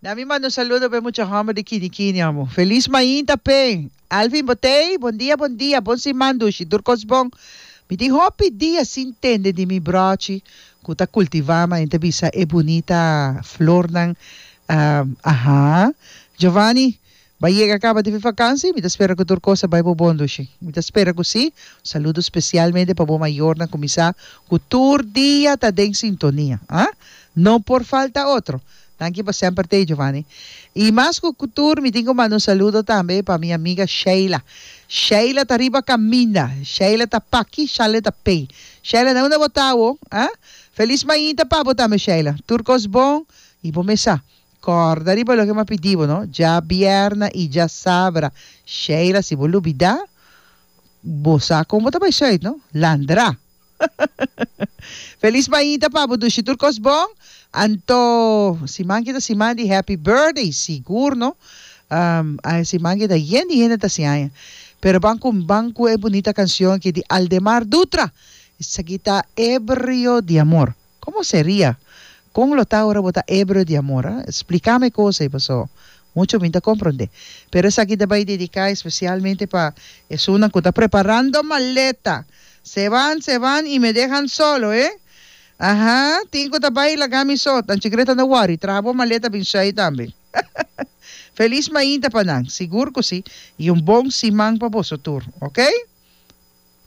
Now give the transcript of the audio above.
Na mi manda un saludo pa e mucha homber di Kinikini amo. Feliz mainta p'e! Alvin Botey, Bon dia, bon dia, bon siman dushi, tur cos bon. Mi tin hopi dia sin tende di mi brochi cu ta cultiva ma enta bisa e bunita flornan, ahh, ahá. Giovanni, Bai yega caba di mi vakansi, mi ta spera cu tur cos a bai bo bon Lushi. Mi ta spera cu si. Un saludo specialmente pa bo mayornan cu mi sa cu tur dia ta den sintonia, ha? No por falta otro. Danki pa semper tey Giovanni. Y mas cu tur mi tin cu manda un saludo tambe pa mi amiga Sheila. Sheila ta riba caminda. Sheila ta paki, Shanley ta pey. Sheila nan unda bo ta awo, ha? Feliz mainta pa bo tambe Sheila. Tur cos bon y bo mes sa. Corda riba loke m'a pidi bo, no? Dja bierna y dja sabra. Sheila, si bo lubida, bo sa con bo ta bay zuid, no? Landra! Feliz mañita pa bo dushi tur cos bon. Anto, siman ki ta siman di happy birthday, sigur, no? Ahe siman ki ta yen di hende ta hasi aña. Pero ban cu, ban cu e bunita cancion aki di Aldemar Dutra. Esaki ta Ebrio di amor. Como seria? Con lo ta ora bo ta hebreo di amor, ha? Splicame e cosa ei paso mucho mi ta compronde. Pero esaki ta bay dedica especialmente pa esunnan cu ta preparando maleta. Se van, se van y me dehan solo, eh? Aha, tin cu ta bay laga mi so, tan chikireta no worry, traha bo maleta bin shai tambe. Feliz mainta pa nan, sigur cu si, y un bon siman pa boso tur, ok?